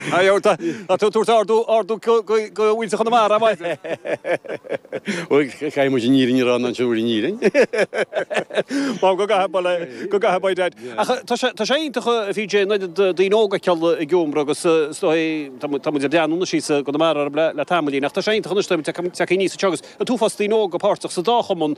Tá tú ag tabhairt ardú go bhfuil sé chun amach, ar mhaith leat? Caithfidh muid an fhírinne a rá in aon seomra an fhírinne. Bhal, go gcaithfidh, bhal, go gcaithfidh, by dad. Ach tá sé iontach, a PJ, an oiread daoine óga ag goil ag iomramh agus is dóigh, tá muid ag breathnú anois síos i gConamara orm le tamaillín, ach tá sé iontach anois, tá muid ag teacht aníos anseo agus an t-uafás daoine óga páirteach sa dá chumann.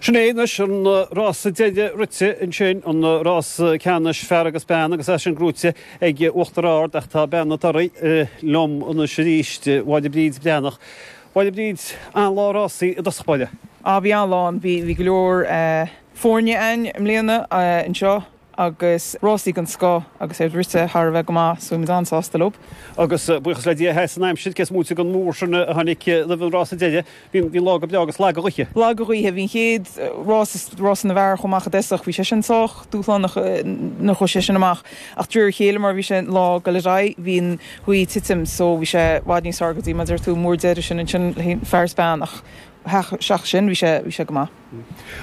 Sin é anois an rása deiridh rite ansin, an rása ceannais fear agus bean agus é sin buaite ag Uachtar Ard, ach tá bean na dtorthaí liom anois arís, Máire Bríd Breathnach. A Mháire Bríd, an-lá rásaí i dtosach báire. Á bhí an-lá ann, bhí go leor foirne ann i mbliana anseo. agus rásaí den scoth agus iad rite thar a bheith go maith so bhí muid an-sásta leo. Agus buíochas le Dia, sheas an aimsir, cé is móite den mhúr sin a tháinig roimh an rása deiridh, bhí an lá go breá agus lag an ghaoth. Lag an ghaoth, bhí an chéad rása, rása na bhfear, a chuaigh amach i dtoiseach, bhí sé sin sách dúshlánach nuair a chuaigh sé sin amach ach de réir a chéile mar a bhí an lá ag dul ar aghaidh bhí an ghaoth ag titim so bhí sé i bhfad níos fearr go dtí mar a deir tú an múr deiridh sin, ansin féin fear is bean ach ach seachas sin bhí sé, bhí sé go maith.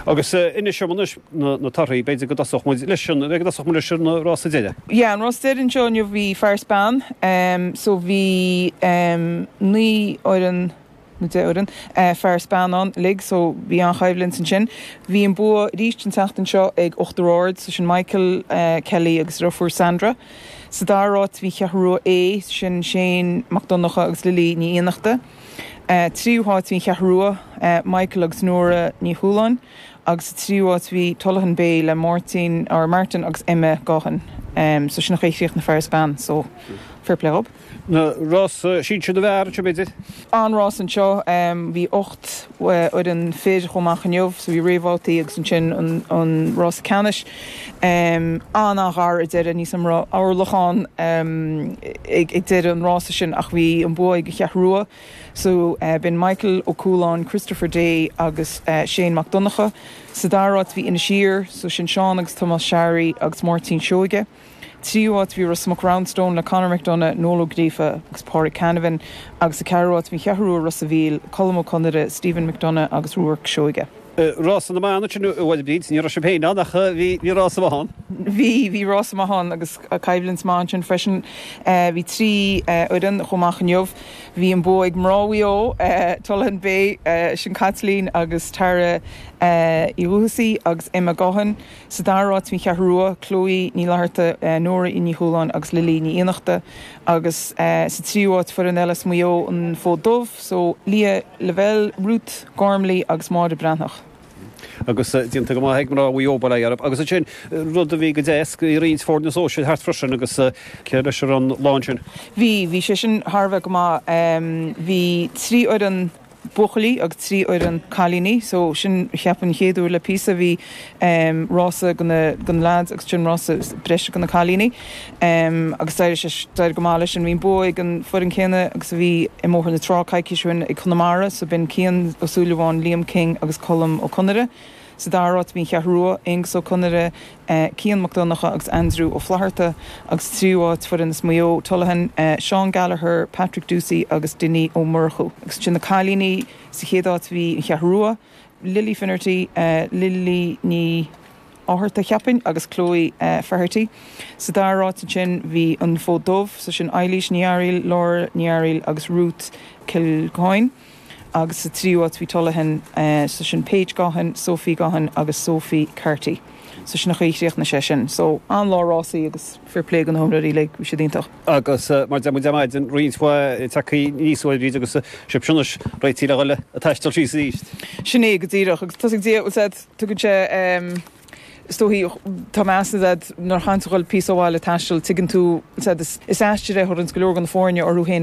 Agus inis dom anois na torthaí. B'fhéidir go dtosódh muid leis an, b'fhéidir go dtosódh muid leis an rása deiridh. Yeah, an rása deiridh anseo inniu bhí fear is bean, so bhí naoi fhoireann nó deich fhoireann fear is bean ann uilig, so bhí an-choimhlint ansin. Bhí an bua arís an tseachtain seo ag Uachtar Ard, so sin Michael Kelly agus a dheirfiúr Sandra. Sa dara háit bhí an Cheathrú Rua A, sin Shane Mac Donnacha agus Lily Ní Fhiannachta. tríú háit bhí An Cheathrú Rua, Michael agus Nora Ní Chualáin, agus sa tríú háit bhí Tullahan Bay le Máirtín, or Martin, agus Emma Gaughan. So sin a chríochnaigh na fear is bean, so fair play dhób. An rása sinsir na bhfear, ansin b'fhéidir? An-rása anseo, bhí ocht fhoireann fir a chuaigh amach inniu. Bhí réamhbhabhtaí agus ansin an rása ceannais an-an-ghar ar deireadh. Níos mó ná orlach ann ag deireadh an rása sin ach bhí an bua ag an Cheathrú Rua. B'in Michael Ó Cualáin, Christopher Day agus Shane Mac Donnacha. Sa dara háit bhí Inis Oírr, sin Seán agus Tomás Sharry agus Máirtín Seoige. tríú háit bhí Ros Muc Roundstone le Conor McDonagh, Noel Ó Gríofa agus Páraic Canavan agus sa gceathrú háit bhí an Cheathrú Rua Ros a' Mhíl, Colm Ó Conaire, Stephen McDonagh agus Ruairc Seoige. Rása na mban ansin a Mháire Bríd, ní raibh sibh féin ann ach bhí rása maith ann. Bhí, bhí rása maith ann agus coimhlint mhaith ansin freisin. Bhí trí fhoireann a chuaigh amach inniu. Bhí an bua ag mná Mhaigh Eo, Tullahan Bay, sin Caitlín agus Tara Uí Dhuthsaigh agus Emma Gaughan. Sa dara áit, An Cheathrú Rua, Chloe Ní Fhlatharta, Nóra Ní Chualáin agus Lily Ní Fhiannachta, agus sa tríú áit, foireann eile as Maigh Eo, An Fód Dubh, so Leah Lavelle, Ruth Gormley agus Máire Breathnach. agus déanta go maith ag mná Mhaigh Eo, bail orthu. Agus ansin, rud a bhí go deas, bhí roinnt foirne sóisir thart freisin agus cur leis ar an lá ansin? Bhí, bhí sé sin thar a bheith go maith. Bhí trí fhoireann buachaillí agus trí fhoireann cailíní so sin cheapfainn an chéad uair le píosa bhí ehm rása go na go na lads agus sin rása breise go na cailíní ehm agus d'éirigh sé d'éirigh go maith leis sin bhí an bua ag an foireann chéanna agus a bhí i mBóthar na Trá coicís ó shin ag Conamara so b'in Cian Ó Súilleabháin Liam King agus Colm Ó Conaire Sa dara háit bhí an Cheathrú Rua, Aonghus Ó Conaire, Cian Mac Donnacha agus Aindriú Ó Flaithearta, agus sa tríú háit foireann as Maigh Eo, Tullaghan, Seán Gallagher, Patrick Doocey agus Dinny Ó Murchú. Agus ansin na cailíní, sa chéad áit bhí an Cheathrú Rua, Lily Finnerty, Lily Ní Fhátharta, cheapfainn, agus Chloe Faherty. Sa dara háit ansin bhí an Fód Dubh, so sin Eilís Ní Fhearaíl, Laura Ní Fhearaíl agus Ruth Kilcoyne. agus sa tríú háit bhí Tullaghan, so sin Paige Gaughan, Sophie Gaughan agus Sophie Carty, so sin an chaoi chríochnaigh sé sin, so an-lá rásaí agus fair play go na hiomróirí uilig, bhí siad iontach. Agus mar deir muid ar maidin, roinnt mhaith tagthaí aníos uaibhrí de agus sibhse anois réitithe le dhul ag taisteal síos arís. Sin é go díreach agus tosaigh Dia, bhuel tá fhios ad, tugann sé ehm, is dóichí, tá meas ad nuair a chaitheann tú dhul píosa ó bhaile ag taisteal, tuigeann tú, tá fhios ad, is, is aistear é thar go leor de na foirne orthu féin,